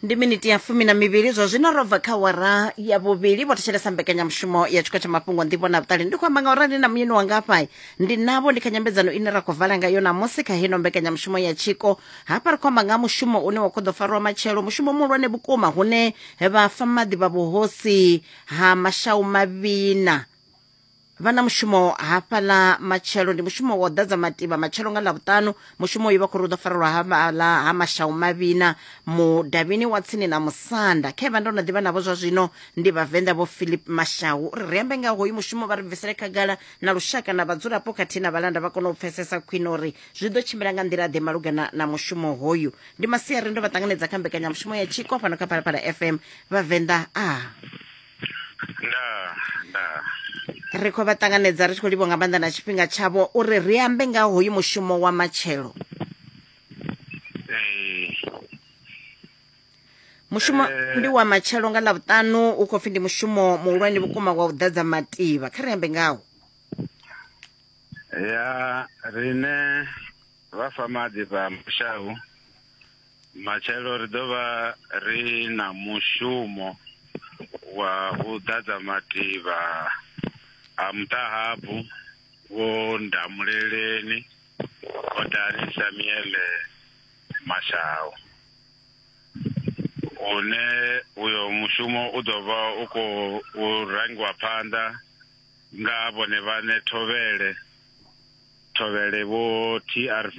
ndi miniti ya fumi na mivhili zwa zwino ro bva kha wara ya vhuvhili vho thetshelesa mbekanyamushumo ya tshiko tsha mafhungo nḓivho na vhuṱali ndi khou amba nga uri ndi na muyeni wanga hafha ndi navho ndi kha nyambedzano ine ra khou vala ngayo namusi kha heno mbekanyamushumo ya tshiko hafha ri khou amba nga ha mushumo une wa khou ḓo farwa matshelo mushumo muhulwane vhukuma hune vhafa maḓi vha vhuhosi ha mashau mavhina vha na mushumo hafhaḽa matshelo ndi mushumo wa u ḓadza mativha matshelo nga ḽavhuṱanu mushumo uyu vha khou ri u ḓo farelwa hafhaḽa ha mashau mavhina mudavhini wa tsini na musanda khe vha ndo no ḓivha navho zwa zwino ndi vhavenḓa vho philip mashau uri ri ambe nga hoyu mushumo vha ri bvisele khagala na lushaka na vhadzulapo khathihi na vhalanda vha kone u pfesesa khwine uri zwi ḓo tshimbila nga nḓila ḓe malugana na mushumo hoyu ndi masiari ndo vha ṱanganedza kha mbekanyamushumo ya tshiko fhano kha phalaphala fm vhavenḓa a ah. ndaa ndaa ri khou vha ṱanganedza ri tshi khou livho nga maanḓa na tshifhinga tshavho uri ri ambe nga hoyu mushumo wa matshelo mushumo eh. ndi wa matshelo nga ḽa vhuṱanu u khou pfhi ndi mushumo muhulwane vhukuma wa u ḓadza mativa kha ri ambe ngawo ya rine vha famaḓi vha mushau Matshelo ri ḓo vha ri na mushumo wa u ḓadza mativha a muṱahabvu wo Ndamuleleni, Khodani Samuele Mashau, une uyo mushumo u ḓo vha u khou rangiwa phanḓa nga vhone vhaṋe Thovhele Thovhele Vho TRV.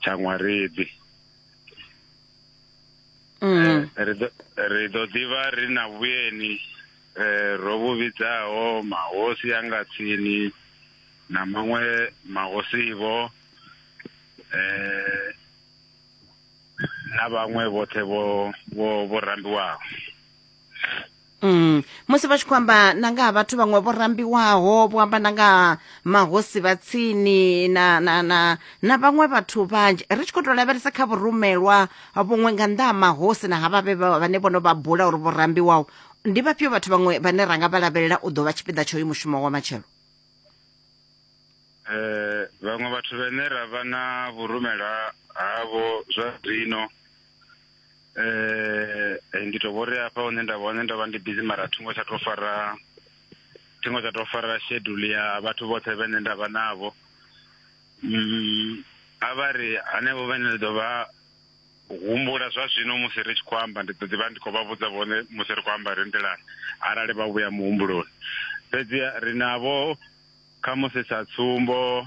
tsha ṅwarebi mm. eh, ri ḓo ḓivha ri na vhuyeni eh, ro vhu vhidzaho mahosi a nga tsini na maṅwe mahosivo eh, na vhaṅwe vhoṱhe vho rambiwaho Mm. musi vha tshi khou amba na nga ha vhathu vhaṅwe vho rambiwaho vho amba na nga mahosi vha tsini na na na na vhaṅwe vhathu vhanzhi ri tshi khou tou lavhelesa kha vhurumelwa vhuṅwe nga nnḓa ha mahosi na havha vhe vhane vho no vha bula uri vho rambiwaho ndi vhafhio vhathu vhaṅwe vhane ra nga vha lavhelela u ḓo vha tshipiḓa tsha uyu mushumo wa matshelo um vhaṅwe vhathu vhane ra vha na vhurumelwa havho zwa zwino eh, eh ndi to vhori hafha hune nda hone ndo vha ndi busy mara thingo tsha to fara thingo tsha to fara schedule ya vhathu vhoṱhe vhene nda vha navho mm, a vha ri hanevho vhene ndi ḓo vha humbula zwa zwino musi ri tshi khou amba ndi ḓo ḓivha ndi khou vha vhudza vhone musi ri khou amba ri nḓilani arali vha vhuya muhumbuloni fhedzi ri navho kha musi sa tsumbo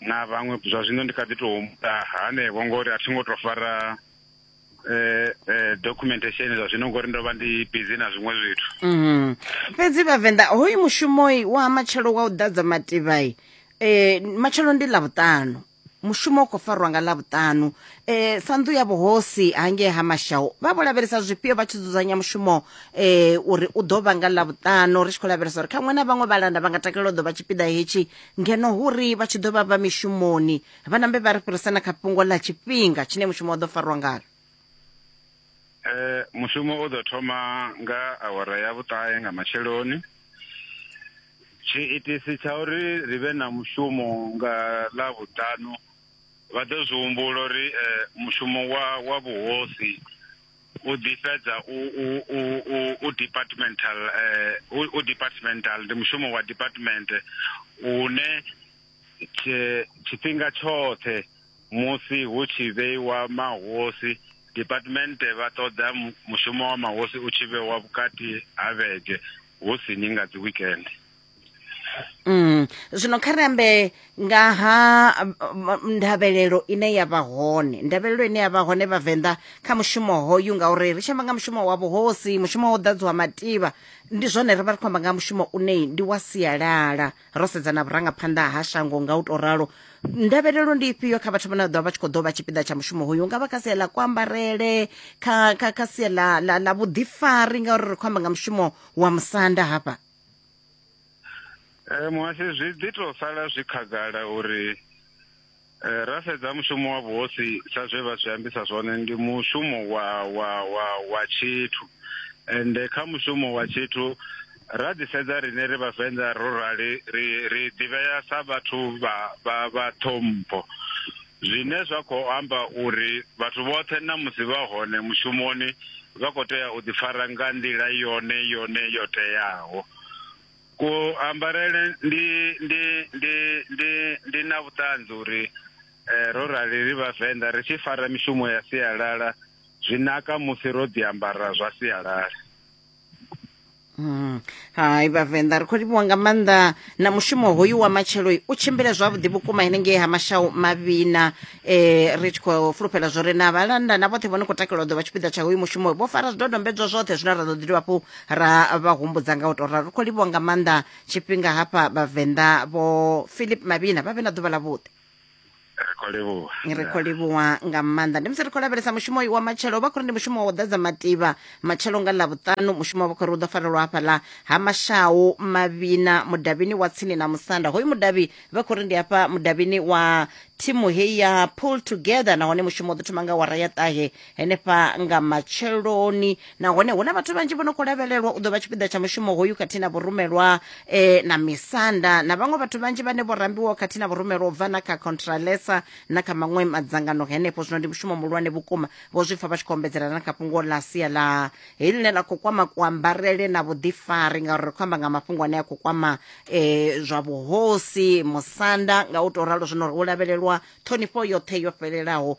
na vhaṅwe zwa zwino ndi kha ḓi tou humbula hanevho ngori a thi ngo tou fara eh, eh, documentation zwa zwino ngori ndo vha ndi busy na zwiṅwe zwithu mhm. fhedzi vhavenḓa hoyu mushumoi wa matshelo wa u ḓadza mativhai eh, matshelo ndi ḽa vhuṱanu mushumo u khou farwa nga ḽavhuṱanu um eh, sa nnḓu ya vhuhosi hangei ha mashau vha vho lavhelesa zwifhio vha tshi dzudzanya mushumo um uri u ḓo vha nga ḽavhuṱanu ri tshi khou lavhelesa uri kha ṅwe na vhaṅwe vhalanda vha nga takalela u ḓo vha tshipiḓa hetshi ngeno hu ri vha tshi ḓo vha vha mishumoni vha nambe vha ri fhirisa na kha fhungo ḽa tshifhinga tshine mushumo wa ḓo farwa ngalo eh mushumo u ḓo thoma nga awara ya vhuṱahe nga matsheloni tshiitisi tsha uri ri vhe na mushumo nga ḽa vhuṱanu vha ḓo zwi humbula uri eh mushumo wa wa vhuhosi u ḓi fhedza u u u u u departmental eh, u, u departmental ndi mushumo wa department une tshi- tshifhinga tshoṱhe musi hu tshi vheiwa mahosi department vha ṱoḓa mu- mushumo wa mahosi u tshi vhewa vhukati ha vhege hu si ni nga dzi weekend Mm. zwino kha ri ambe nga ha um, um, ndavhelelo ine ya vha hone ndavhelelo ine ya vha hone vhavenḓa kha mushumo hoyu ngauri ri tshi amba nga mushumo wa vhuhosi mushumo wo ḓadziwa mativha ndi zwone ri vha ri khou amba nga mushumo une ndi wa sialala ro sedza na vhurangaphanḓa ha shango nga u tou ralo ndavhelelo ndi ifhio kha vhathu vhane vha ḓovha vha tshi khou ḓo vha tshipiḓa tsha mushumo hoyu nga vha kha sia ḽa kuambarele kha kha kha sia ḽa ḽa ḽa vhuḓifari ngauri ri khou amba nga mushumo wa musanda hafha Eh, muhasi zwi ḓi to sala zwi khagala uri eh, ra sedza mushumo wa vhuhosi sa zwe vha zwi ambisa zwone ndi mushumo wa wa wa wa tshithu ende kha mushumo wa tshithu ra ḓi sedza rine ri vhavenḓa ro rali ri ri ḓivhea sa vhathu vha vha vha ṱhompho Zwine zwa khou amba uri vhathu vhoṱhe na musi vha hone mushumoni vha khou tea u ḓifara nga nḓila yone yone yo teaho. Kuambarele ndi, ndi, ndi, ndi, ndi na vhuṱanzi uri ro rali ri Vhavenḓa ri tshi fara mishumo ya sialala zwi naka musi ro ḓiambara zwa sialala. Mm. hai vhavenḓa ri khou livhuwa nga maanḓa na mushumo hoyu wa matshelo u tshimbile zwavhuḓi vhukuma henengei ha mashau mavhina eh ri tshi khou fulufhela zwo re na vhalanda na vhoṱhe vho no khou takalelwa ḓo vha tshipiḓa tsha hoyu mushumo vho fara zwidodombedzwa zwoṱhe zwine ra ḓo ḓi dovha hafhu ra vha humbudza nga u tou ralo ri khou livhuwa nga maanḓa tshifhinga hafha vhavenḓa vho philip mavhina vha vhe na ḓuvha ḽa vhuḓi ri khou livhuwa ri khou livhuwa nga maanḓa ndi musi ri khou lavhelesa mushumo uyu wa matshelo vha khou ri ndi mushumo wa u ḓadza mativha matshelo nga ḽavhuṱanu mushumo vha khou ri u ḓo farelwa hafhaḽa ha mashau mavhina mudavhini wa tsini na musanda hoyu mudavhi vha khou ri ndi hafha mudavhini wa thimu heyi ya pull together nahone mushumo u ḓo thoma nga wara ya ṱahe henefha nga matsheloni nahone hu na vhathu vhanzhi vho no khou lavhelelwa u ḓo vha tshipiḓa tsha mushumo hoyu khathihi na vhurumelwa eh, na misanda na vhaṅwe vhathu vhanzhi vhane vho rambiwaho khathihi na vhurumelwa u bva na kha contralesa na kha maṅwe madzangano henefho zwino ndi mushumo muhulwane vhukuma vho zwi pfa vha tshi khou ombedzela na kha fhungo ḽa sia ḽa heyi ḽine ḽa khou kwama kuambarele na vhuḓifari ngauri ri khou amba nga mafhungo ane a khou kwama eh, zwa vhuhosi musanda nga u tou ralo zwino ri u lavhelelwa ṱhonifho yoṱhe yo fhelelaho